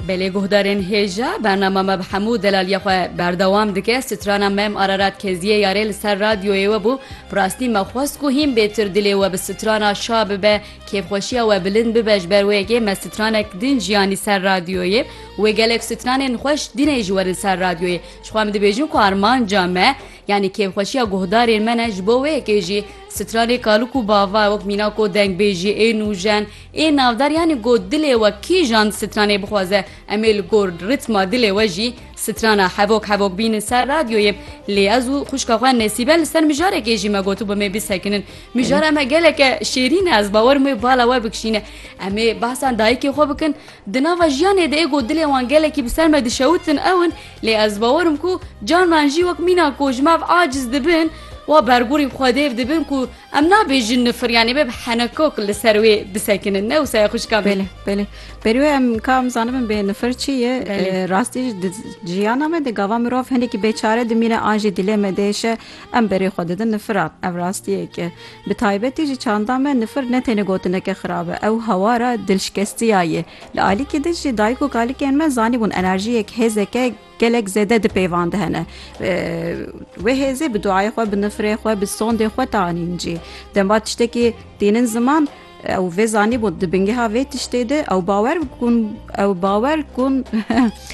Belê guhdarên hêja, bernama me bi hemû delaliya xwe berdewam dike, strana Mem Ararat Keziyê yarê li ser radyoyê we bû, bi rastî me xwest ku hîn bêtir dilê we bi strana şa bibe, kêfxweşiya we bilind bibe ji ber wê yekê me stranek din jiyanî ser radyoyê wê gelek stranên xweş din ê ji werin ser radyoyê ji xwe em dibêjin ku armanca me yanî kêfxweşiya guhdarên me ne ji bo wê yekê jî stranê kalûk û bava wek mîna ku dengbêjî ê nûjen Ê navdar yanî got dilê we kîjan di stranê bixwaze em ê li gor rîtma dilê we jî strana hevok hevok bînin ser radyoyê lê ez û xwişka xwe Nesîbe li ser mijarekê jî me gotibû me bisekinin mijara me geleke şêrîn e ez bawer mê bala we bikişîne em ê behsa dayikê xwe bikin di nava jiyanê de ê got dilê wan gelekî bi ser me dişewitin ew in lê ez bawer im ku carnan jî wek mîna ku ji me ev aciz dibin wa bergûrî xwedêv dibin ku Em nabêjin nifir yanî bê bi henekok li ser wê bisekinin ne wisa ye xwişka Belê belê Berî wê em ka em zanibin bê nifir çi ye rastî di jiyana me de gava mirov hinekî bêçare dimîne an jî dilê me dêşe em berê xwe didin nifira ev rastiyeke bi taybetî jî çanda me nifir ne têne gotineke xirab e ew hewara dilşkestiya ye li alîkî di jî dayik û kalikên me zanîbûn enerjiyek hêzeke Gelek zêde di pêvan de hene. Wê hêzê bi duayê xwe, bi nifrê xwe, bi sondê xwe tanîn cî. Demva tiştekî tînin ziman, ew vê zanîbûn di bingeha vê tiştê de ew bawer bikun ew bawer kun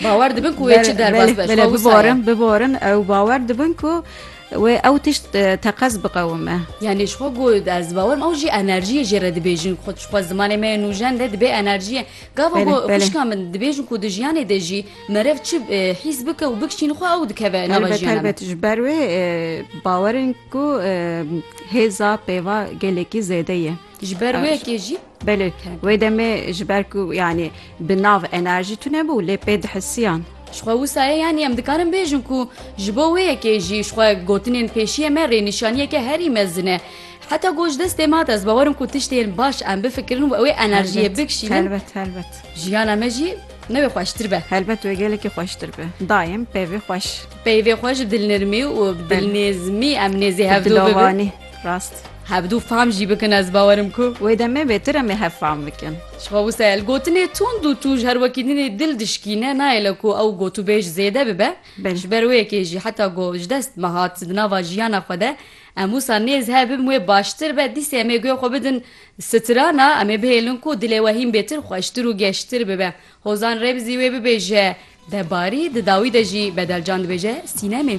bawer dibin ku wê çi derbas beş biborin biborin ew bawer dibin ku wê ew tişt teqez biqewime yanî ji xwe got ez bawer ew jî enerjiyê jê re dibêjin xwe ji xwe zimanê me nûjen de dibê enerjiyê gava xişka min dibêjin ku di jiyanê de jî Meriv çi hîs bike û bikişîn xwe ew dikeve nava jiyana me. Elbet elbet ji ber wê bawer in ku hêza pêva gelekî zêde ye. Ji ber wê yekê jî. Belê wê demê ji ber ku yanî bi nav enerjî tune bû lê pê dihisiyan. Jixwe wisa ye yanî em dikarin bêjin ku ji bo wê yekê jî jixwe gotinên pêşiyê me rênîşaniyeke herî mezin e. Heta ku ji destê ma de ez bawer in ku tiştên baş em bifikirin û wê enerjiyê bikişînin. Elbet elbet. Jiyana me jî Ne wê xweştir be. Helbet wê gelekî xweştir be. Daim peyvê xweş. Peyvê xwe ji dilnirmî û bi dilnêzmî em nêzî hev dû bibin. Rast. Hev dû fam jî bikin ez bawerim ku. Wê demê bêtir em ê hev fam bikin. Ji xwe wisa ye. Li gotinê tund û tûj her wekî din ê dil dişkîne nayê li ku ew gotûbêj zêde bibe. Ji ber wê yekê jî heta ku ji dest me hat di nava jiyana xwe de em wisa nêz hev bibin wê baştir be dîsê em ê guya xwe bidin Strana em ê bihêlin ku dilê we hîn bêtir xweştir û geştir bibe. Hozan Remzî wê bibêje, Debarî di dawî de jî bedelcan dibêje sînemê.